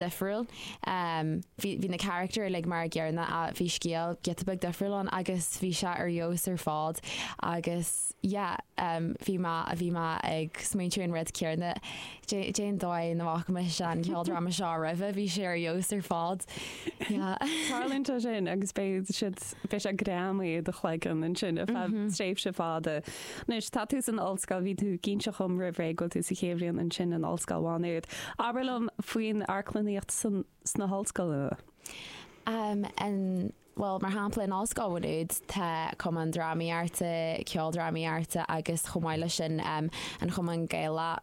difriúil. Bhí bhí na carachtair uilig mar an gcéanna ach bhí scéal giota beag difriúil ann agus bhí sé ar fheabhas ar fad agus yeah bhí mé bhí mé ag smaointiú an rud céanna cé cén dóigh nach bhfaca mise an ceoldráma seo roimhe bhí sé ar fheabhas ar fad yeah. Tarlúint é sin agus beidh siad Beidh sé greamaithe i do chloigeann ansin ar feadh tréimhse fada. Anois tá tú san ollscoil, bhí tú ag inseacht dom roimh ré go bhfuil tú sa chéad bhliain ansin in Ollscoil Mhá Nuad. Abair liom faoin amharclannaíocht sna hollscoileanna. Bhuel, mar shampla in Ollscoil Mhá Nuad tá Cumann Drámaíochta, Ceoldrámaíochta agus chomh maith leis sin an Cumann Gaelach,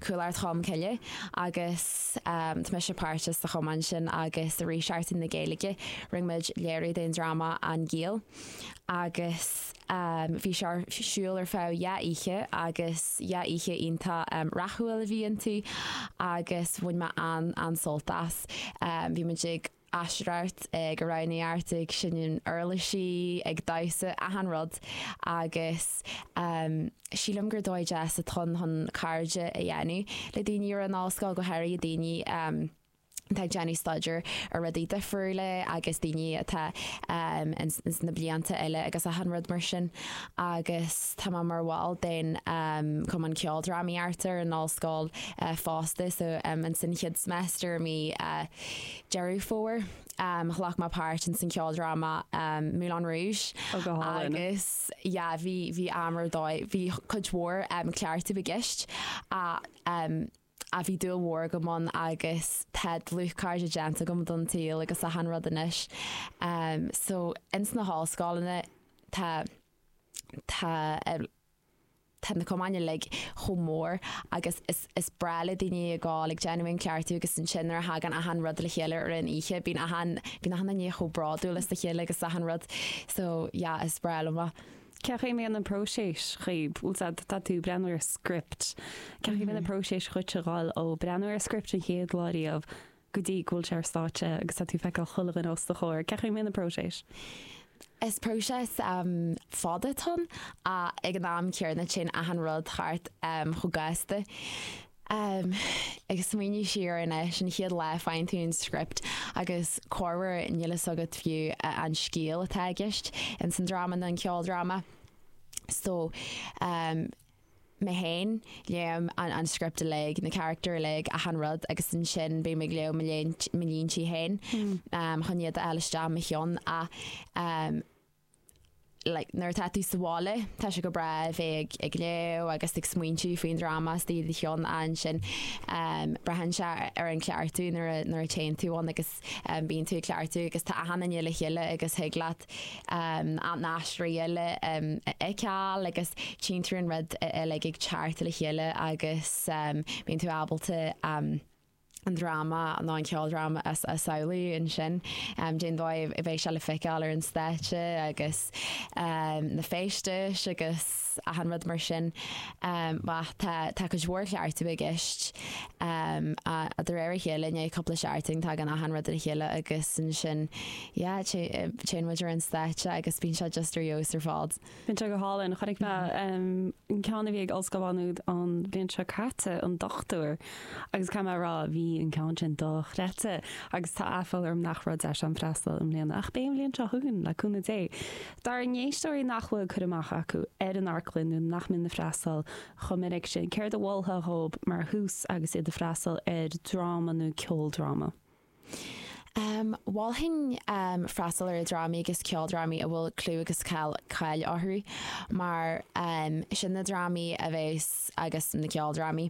Cuallacht Cholm Cille, agus Tá mise páirteach sa chumann sin agus i rith Seachtain na Gaeilge rinne muid léiriú den dráma An Giall agus bhí sé ar siúl ar feadh dhá oíche agus dhá oíche iontach rathúil a bhí iontu agus bhain mé an-an-sult as. Bhí muid ag. Aisteoireacht go raibh neart ag seinm uirlisí ag damhsa achan rud agus sílim gur dóigh deas atá ann chun cairde a dhéanamh le daoine ar an ollscoil go háirithe daoine atá ag déanamh staidéar ar rudaí difriúla agus daoine atá ins na blianta eile agus achan rud mar sin agus tá mé mar bhall den cumann ceoldrámaíochta ar an ollscoil fosta so ins an chéad semester i mí Deireadh Fómhair, ghlac mé páirt ins an cheoldráma Moulin Rouge. Oh go hálainn. Agus yeah, bhí, bhí am ar dóigh, bhí cuid mhór cleachtadh i gceist ach bhí dúil mhór agam ann agus tá dlúthchairde déanta agam don tsaol agus achan rud anois. So ins na hollscoileanna tá, tá, Tá na cumainn uilig chomh mór agus is breá le daoine ag gol, ag déanamh an cleachtadh agus ansin nuair a thagann achan rud le chéile ar aon oíche bíonn achan bíonn achan nduine chomh bródúil as a chéile agus achan rud so yeah is breá liom é. Cén chaoi a mbíonn an próiseas i gceist? Bhuel tá tá tú ag breathnú ar script. Cén chaoi a mbíonn an próiseas dhuit a dhul ó breathnú ar script an chéad lá riamh go dtí go bhfuil sé ar stáitse agus tá tú ag feiceáil chuile dhuine os do chomhair. Cén chaoi a mbíonn an próiseas? Is próiseas fada atá ann ach ag an am céanna téann achan rud thart chomh gasta. Ag smaoineamh siar anois an chéad lá faigheann tú an script agus corruair níl fhios agat fiú an scéal atá i gceist ins an dráma nó an ceoldráma so mé fhéin, léann an an script uilig, na carachtair uilig, achan rud agus ansin bím ag léamh mo lín mo líntí fhéin em chun iad a fháil isteach i mo cheann a em like nuair atá tú sa bhaile tá sé go breá a bheith ag ag léamh agus ag smaointiú faoin dráma i do do cheann ansin em braitheann sé ar an chleachtadh nuair a nuair a téann tú ann agus bíonn tú ag cleachtadh agus tá aithne againn le chéile agus thig leat na haisteoirí eile a fheiceáil agus tchíonn tú an rud uilig ag teacht le chéile agus bíonn tú ábalta an dráma nó an ceoldráma a samhlú ansin. Den dóigh a mbeidh sé le feiceáil ar an stáitse agus na féistis agus 'S achan rud mar sin. Ach tá, tá cuid mhór cleachtadh i gceist. De réir a chéile, i ndiaidh cúpla seachtain, tagann achan rud le chéile agus ansin, yeah, téann muid ar an stáitse agus bíonn sé just ar fheabhas ar fad. Bíonn sé go hálainn. Chonaic mé an ceann a bhí ag Ollscoil Mhá Nuad an bhliain seo caite, an Dochtúir, agus caithfidh mé a rá, bhí an ceann sin dochreidte agus tá aiféala orm nach raibh deis agam freastal i mbliana ach beidh an bhliain seo chugainn le cúnamh Dé. D'ár n-éisteoirí nach bhfuil cur amach acu ar an amharclann nó nach mbíonn ag freastal chomh minic sin. Céard a mholfá dhóibh mar thús agus iad ag freastal ar dráma nó ceoldráma? Em, mholfainn, em, freastal ar dhrámaí agus ceoldrámaí a bhfuil clú agus cáil, cáil orthu mar, em, sin na drámaí a bheas, agus na ceoldrámaí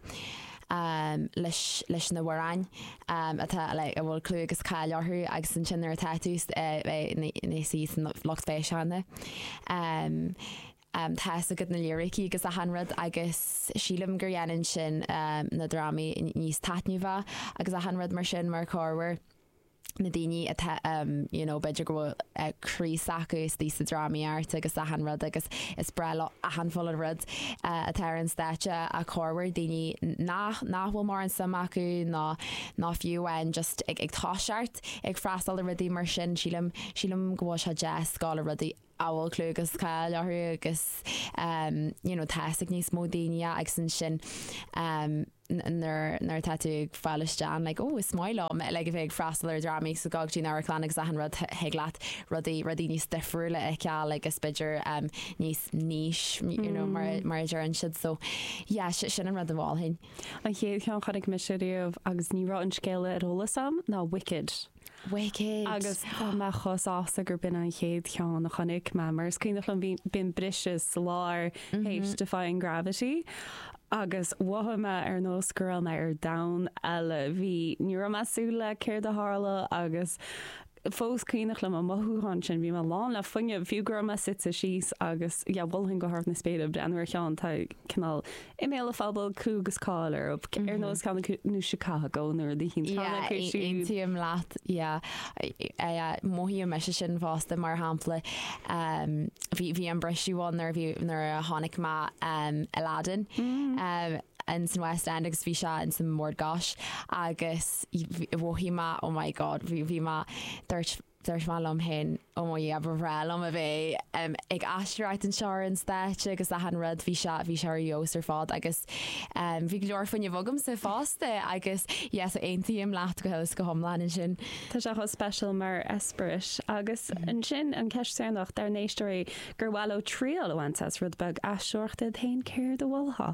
leis na hamhráin atá a bhfuil clú agus cáil orthu agus ansin nuair atá tú i do shuí sa lucht féachana tá fhios agat na lírící agus achan rud agus sílim gur dhéanann sin na drámaí níos taitneamhaí agus achan rud mar sin mar cuid mhór. na daoine atá you know b'fhéidir go bhfuil croí s'acu istigh sa drámaíocht agus achan rud agus is breá leo achan uile rud atá ar an stáitse ach cuid mhór daoine nach nach bhfuil mórán suim acu ná ná fiú amháin just ag ag toiseacht ag freastal ar rudaí mar sin sílim sílim go bhfuil sé deas go háirithe rudaí a bhfuil clú agus cáil orthu agus you know teasaigh níos mó daoine agus ansin nuair atá tú ag fáil isteach like oh is maith liom like a bheith ag freastal ar dhrámaí agus ag gabháil go dtí'n amharclann agus achan rud thig leat rudaí rudaí níos difriúla a fheiceáil like is b'fhéidir níos niche you know mar a deireann siad so yeah sin an rud a mholfainn. An chéad cheann a chonaic mise riamh agus ní raibh an scéal ar eolas a'm ná Wicked. Wicked! Agus tá mé chomh sásta gurb in an chéad cheann a chonaic mé, mar is cuimhneach liom bíonn briseadh sa lár théis Defying Gravity agus mhothaigh mé ar nós go raibh mé ar domhan eile. Bhí, ní raibh mé súil le céard a tharla agus fós cuimhneach liom an mothúchán sin, bhí mé lán le fuinneamh, fiú go raibh mé suite síos agus yeah, mholfainn go hard na spéire breathnú ar cheann, tá cineál i mbéal an phobail clú agus cáil orthub ar nós ceann acu nó Chicago nuair a d'itheann ceann acu siúd. Yeah, aontaím leat, yeah. Mothaím mise sin fosta, mar shampla, bhí an briseadh ann nuair a bhí, nuair a chonaic mé Aladdin ins an West End agus bhí sé ins an mBord Gáis agus mhothaigh mé, oh my God, bhí mé, dúirt Dúirt mé liom fhéin, oh mo Dhia, ba bhreá liom a bheith ag aisteoireacht anseo ar an stáitse agus achan rud, bhí sé, bhí sé ar fheabhas ar fad agus bhí go leor fuinnimh agamsa fosta agus yes aontaím leat go huile is go hiomlán ansin. Tá sé chomh speisialta mar eispéireas agus ansin an ceist deireanach dár n-éisteoirí gur mhaith leo triail a bhaint as rud beag aisteoireachta iad fhéin, céard a mholfá?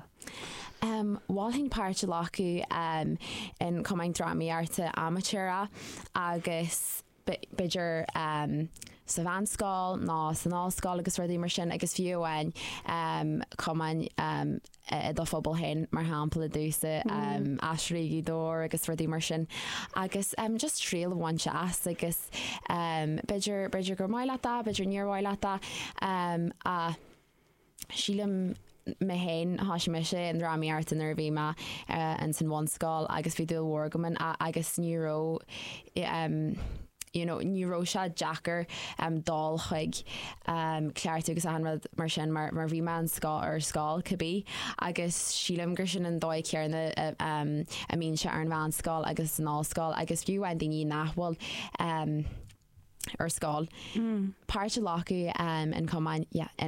Mholfainn páirt a ghlacadh in cumann drámaíochta amaitéarach agus b'fhéidir sa mheánscoil nó san ollscoil agus rudaí mar sin agus fiú amháin cumainn i do phobal féin mar shampla domhsa Aisteoirí Ghaoth Dobhair agus rudaí mar sin agus just triail a bhaint as agus b'fhéidir gur mhaith leat é, b'fhéidir níor mhaith leat é. sílim mé fhéin thoisigh mise i ndrámaíocht nuair a bhí mé ins an bhunscoil agus bhí dúil mhór agam ann agus ní raibh ehm you know ní raibh sé deacair ehm dul chuig ehm cleachtadh agus achan rud mar sin mar mar bhí mé ar scoil cibé agus sílim gur sin an dóigh chéarna ehm a mbíonn sé ar an mheánscoil agus san ollscoil agus fiú amháin daoine nach bhfuil ehm ar scoil, páirt a ghlacadh in cumainn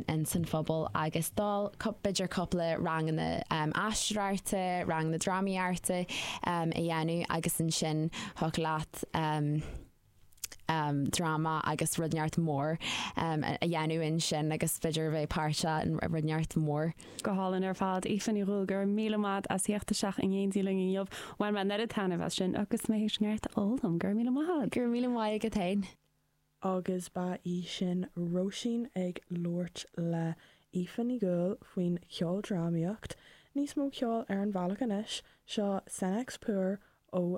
ins an phobal agus dul b'fhéidir cúpla ranganna aisteoireachta, ranganna drámaíochta a dhéanamh agus ansin thig leat dráma agus rud inteacht mór a dhéanamh ansin agus b'fhéidir a bheith páirteach i rud inteacht mór. Go hálainn ar fad. Aoife Ní Dhubhghaill, go raibh míle maith agat as theacht isteach in éindí linn inniu. Bhain mé an oiread taitneamh as sin agus mé théis neart a fhoghlaim. Go raibh míle maith agat. Go raibh míle maith agat féin. Agus ba í sin Róisín ag labhairt le hAoife Ní Dhubhghaill faoin cheoldrámaíocht. Níos mó ceoil ar an bhealach anois, seo Senex Puer ó